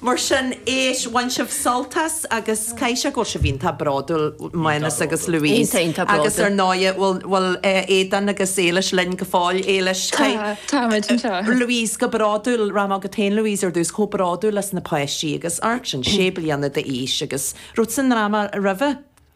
Mar sin, éist, bhain sibh sult as agus caithfidh sé go bhfuil sibh iontach bródúil, Maghnus agus Louise, agus ar ndóigh, bhfuil Aodán agus Éilis linn go fóill, Éilis, táimid anseo, Louise, go bródúil, rachaidh mé chugat féin, Louise, ar dtús, chomh bródúil as na páistí agus amharc sin, sé bliana d'aois agus rud sa ndráma roimhe.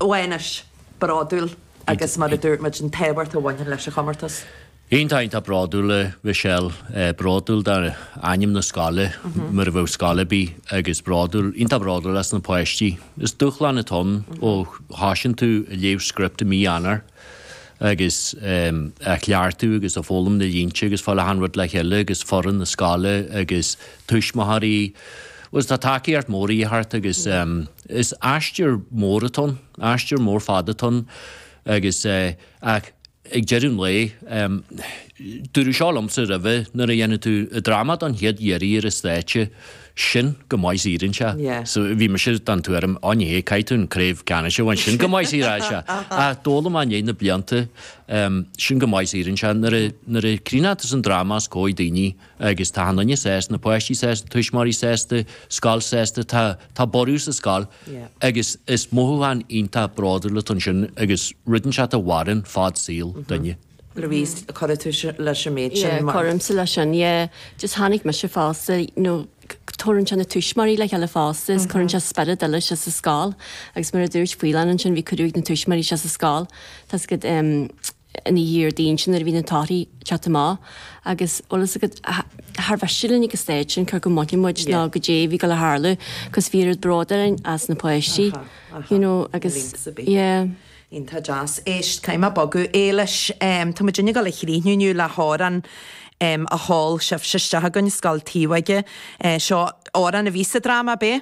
Mhaghnuis, bródúil agus, mar a dúirt muid, an t-ábhar a bhaineann leis an chomórtas. Iontach, iontach bródúil, a Michelle, bródúil dá ainm na scoile, mar a bheadh scoil ar bith, agus bródúil, iontach bródúil as na páistí. Is dúshlán atá ann ó thoisíonn tú ag léamh script i mí Eanáir. agus ag cleachtadh agus ag foghlaim na línte agus fáil achan rud le chéile agus foireann na scoile agus tuismitheoirí bhuel tá tacaíocht mhór de dhíth ort agus is aistear mór atá ann, aistear mór fada atá ann agus ach ag deireadh an lae dúradh seo liomsa roimhe nuair a dhéanann tú dráma don chéad iarraidh ar an stáitse, sin go maith siar anseo. So bhí mise den tuairim, á ní hea, caithfidh tú an craobh ceannais a bhaint, sin go maith siar anseo. Ach d'fhoghlaim mé i ndiaidh na blianta, sin go maith siar anseo. Nuair a chuireann tú an dráma os comhair daoine agus tá achan duine sásta, na páistí sásta, tuismitheoirí sásta, scoil sásta, tá borradh sa scoil agus is mothúchán iontach bródúil atá ansin agus rud é sin a mhaireann fad saoil duine. Louise, gcuirfeadh tú leis an méid sin? Mar. Cuirimse leis sin, yeah. Just chonaic mise fosta, nó tabharann sé na tuismitheoirí le chéile fosta is cuireann sé spiorad eile isteach sa scoil agus mar a dúirt Faoileán ansin bhí cuireadh ag na tuismitheoirí síos sa scoil tráthnóna Déardaoin sin nuair a bhí na torthaí ag teacht amach agus bhuel tá a fhios agat char mhiste linn ag an stage sin cé acu a mbainfeadh muid nó caidé a bhí ag gabháil a tharlú cos bhí oiread bróid orainn as na páistí you know agus yeah. Iontach deas. Éist, caithfidh mé bogadh. Éilis, tá muidinne ag gabháil a chríochnú inniu le hamhrán a sheol sibhse isteach chugainn ó Scoil Taobhóige. Seo amhrán a bhí sa dráma, ab é?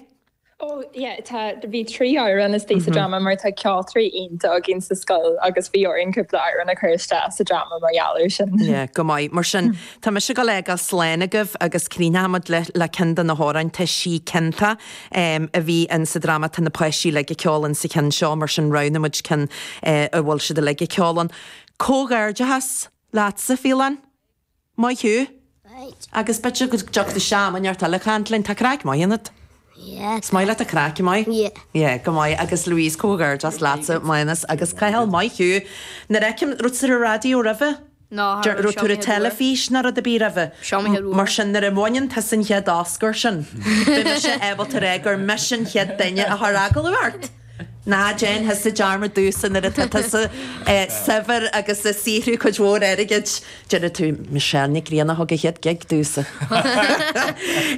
Ó, yeah, tá, bhí trí amhrán is dóigh sa dráma mar tá ceoltóirí iontacha againn sa scoil agus bhí orainn cúpla amhrán a chur isteach sa dráma mar gheall air sin. Yeah, go maith. Mar sin, tá mise ag gabháil a fhágáil slán agaibh agus críochnóidh muid le ceann de na hamhráin, Tá sí Cinnte, a bhí in sa dráma tá na páistí uilig ag ceol in sa cheann seo, mar sin roghnaigh muid ceann a bhfuil siad uilig ag ceol ann. Comhghairdeachas leatsa, Faolán. Maith thú. Right. Agus b'fhéidir go dtiocfaidh tú am inteacht eile a chaint linn. Tá craic mhaith ionat. Yeah. Is maith leat an chraic, an maith? Yeah. Yeah, go maith. Agus Louise, comhghairdeachas leatsa, Maghnus agus Cathal. Maith thú. Nuair fheicim, raibh tú ar an raidió roimhe? Ní raibh tú ar an teilifís ná rud ar bith roimhe. Mar sin nuair a bhaineann tusa an chéad Oscar sin, beidh mise ábalta a rá gur mise an chéad duine a chuir agallamh ort. Ná déan tusa dearmad domhsa nuair atá tusa saibhir agus ag saothrú cuid mhór airgid, déarfaidh tú, Michelle Nic Grianna a thug an chéad gig domhsa.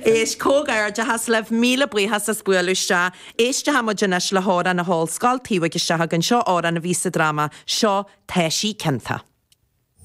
Éist, comhghairdeachas libh, míle buíochas as bualadh isteach. Éisteochaidh muid anois le hamhrán a sheol Scoil Taobhóige isteach chugainn, seo amhrán a bhí sa dráma, seo Taibhsí Cinnte.